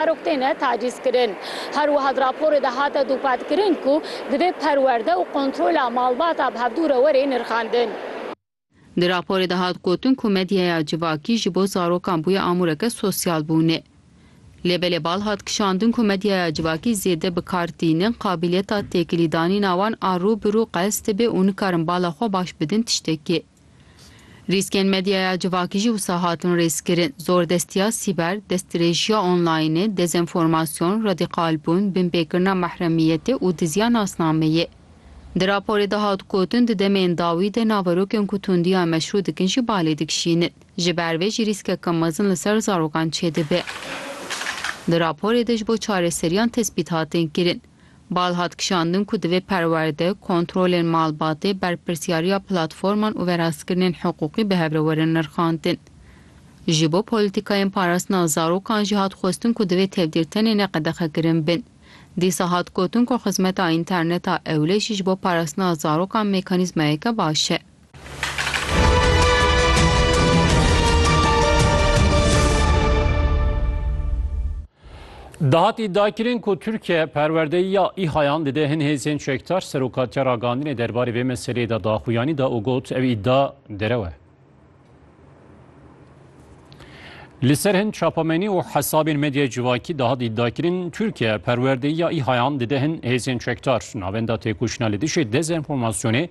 Her ok têne tacîzkirin. Her wiha di raporê de hate dûpatkirin ku divê perwerde û kontrola malbata bi hevdû re were nirxandin. Di raporê de hat gotin ku medyaya civakî ji bo zarokan bûye amûreke sosyal bûne. Lê belê bal hat kişandin ku medyaya civakî zêde bi kar tînin, qabîliyeta têkilîdanîna wan a rû bi rû qels dibe û nikarin bala xwe baş bidin tiştekê. Rîskên medyaya civakî jî wisa hatin rêzkirin, zordestiya sîber, destdirêjiya onlaynê, dezenformasyon, radîkalbûn, binpêkirina mehremiyetê û diziya nasnameyê. Di raporê de hat gotin di demên dawî de naverokên ku tundiya meşrû dikin jî balê dikişînin. Ji ber vê jî rîskeke mezin li ser zarokan çêdibe. Di raporê de ji bo çareseriyan tespît hatin kirin. Bal hat kişandin ku divê perwerde, kontrolên malbatê, berpirsyariya platforman û verastkirinên hiqûqî bi hev re werin nirxandin. Ji bo polîtîkayên parastina zarokan jî hat xwestin ku divê tevdîr tenê ne qedexekirin bin. Dîsa hat gotin ku xizmeta înterneta ewle jî ji bo parastina zarokan mekanîzmayeke baş e. Dahat îdia kirin ku Tirkiye perwerdeyiya îhayan dide hin hêzên çekdar serokatiya ragandinê derbarê vê meseleyê de daxuyanî da û got ev îdia derew e. Li ser hin çapamenî û hesabên medyaya civakî dahat îdia kirin Tirkiye perwerdeyiya îhayan dide hin hêzên çekdar navenda têkoşîna li dijî dezenformasyonê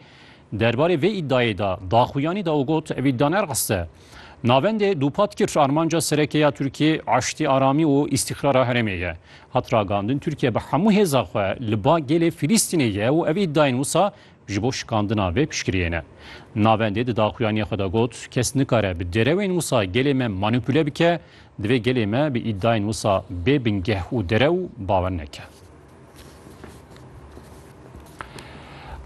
Derbarê vê îdayê de daxuyanî da û got, Evî daner qist e. Navendê dûpat kir armanca sereke ya Tirkiyê eştî, aramî û îstîqrara herêmê ye. Hat ragandin Tirkiye bi hemû hêza xwe li ba gelê Filîstînê ye û ev îdayên wisa ji bo şikandina vê piştgiriyê ne. Navendê di daxuyaniyê xwe de got, Kes nikare bi derewên wisa gelê me manîpule bike, divê gelê me bi îdayên wisa bê bingeh û derew bawer neke.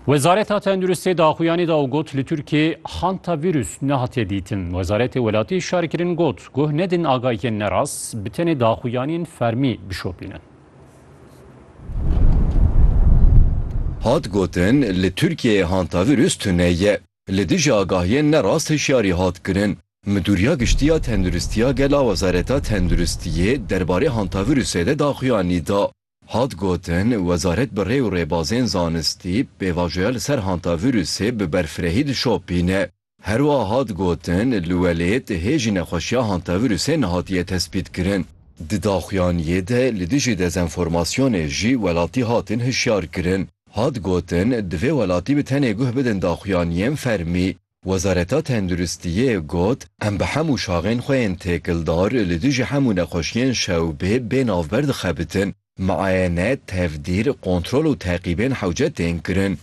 Wezareta Tenduristê di axuyanê de û got li Tirkiyê hantavîrus nehatiye dîtin. Wezaretê welatî şarkirin got guh nedin agahiyên nerast bi tenê di axuyanên fermî bişopînin. Hat gotin li Tirkiyeyê hantavîrus tune ye. Li dijî agahiyên nerast hişyarî hat kirin. Midûriya Giştî ya Tenduristiya Gel a Wezareta Tenduristiyê derbarê hantavirusê de daxuyanî da. Hat gotin, wezaret bi rê û rêbazên zanistî pêvajoya li ser hantavirusê bi berfirehî dişopîne. Herwiha hat gotin, li welêt hê jî nexweşiya hantavirusê nehatiye tespîtkirin. Di daxuyaniyê de li dijî dezenformasyonê jî welatî hatin hişyarkirin. Hat gotin, divê welatî bi tenê guh bidin daxuyaniyên fermî. Wezareta Tenduristiyê got, Em bi hemû şaxên xwe yên têkildar li dijî hemû nexweşiyên şewbê bê navber dixebitin. Miayene, tevdîr, kontrol û teqîbên hewce tên kirin.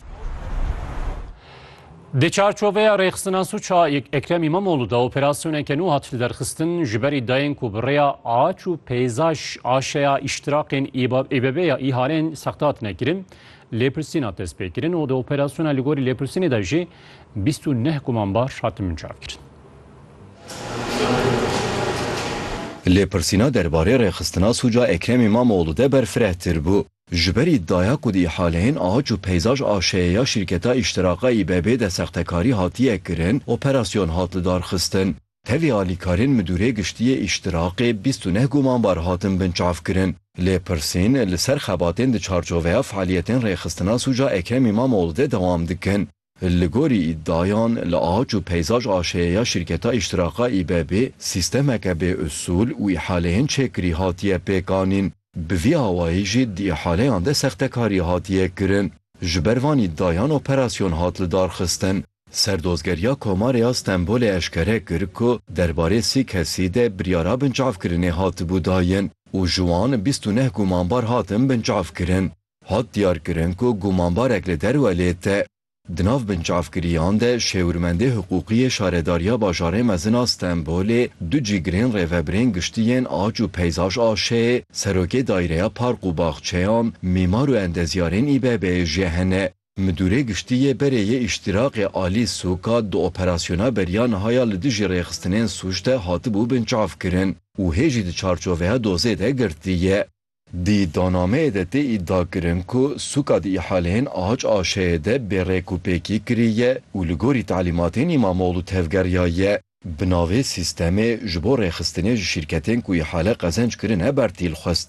Di çarçoveya rêxistina sûca Ekrem Îmamoğlu de operasyoneke nû hat liderxistin ji berî dayên ku bi rêya aç û peyzaj aşeya îştiraqên İBB ya îhalên sexte hatine kirin lêpirsîn hat destpêkirin û di operasyona li gorî lêpirsînê de jî Bîst û neh gumanbar hatin mincavkirin. Lêpirsîna derbarê rêxistina sûca Ekrem Îmamoglû de berfirehtir bû. Ji ber îdaya ku di îhaleyên aç û peyzaj a şeye ya şîrketa Îştiraka İBB'ê de sextekarî hatiye kirin, operasyon hat lidarxistin. Tevî alîkarên Midûrê Giştî yê Îştiraqê bîst û neh gumanbar hatin binçavkirin. Lê pirsên li ser xebatên di çarçoveya fealiyetên Rêxistina Sûca Ekrem Îmamoğlu de dewam dikin. Li gorî îdiayan li Ahaç û Peyzaj AŞ'ê ya şîrketa Îştiraqa İBB sîstemeke bê usûl û îhaleyên çêkirî hatiye pêkanîn. Bi vî awayî jî di îhaleyan de sextekarî hatiye kirin. Ji ber van îdiayan operasyon hat lidarxistin. Serdozgeriya Komarê ya Stenbolê eşkere kir ku derbarê sî kesî de biryara binçavkirinê hatibû dayin û ji wan bîst û neh gumanbar hatin binçavkirin. Hat diyarkirin ku gumanbarek li derwe lê te. Di nav binçavkiriyan de Şêwirmendê Hiqûqî yê Şaredariya Bajarê Mezin a Stenbolê du cîgirên rêvebirên giştî yên Aç û Peyzaj AŞ'ê, Serokê Daireya Park û Baxçeyan, mîmar û endezyarên İBB'ê jî hene. Midûrê Giştî yê Berê yê Îştîraqê Alî Sûka di operasyona beriya niha ya li dijî rêxistinên sûc de hatibû binçavkirin û hê jî di çarçoveya dozê de girtiye. Di iddianameyê de tê îdiakirin ku Sûka di îhaleyên Ahaç Aşeyê de bê rêk û pêkî kiriye û li gorî talîmatên Îmamoglû tevgeriyaye. Bi navê Sîstemê ji bo Rêxistinê ji şîrketên ku îhale qezenc kirine bertîl xwestiye.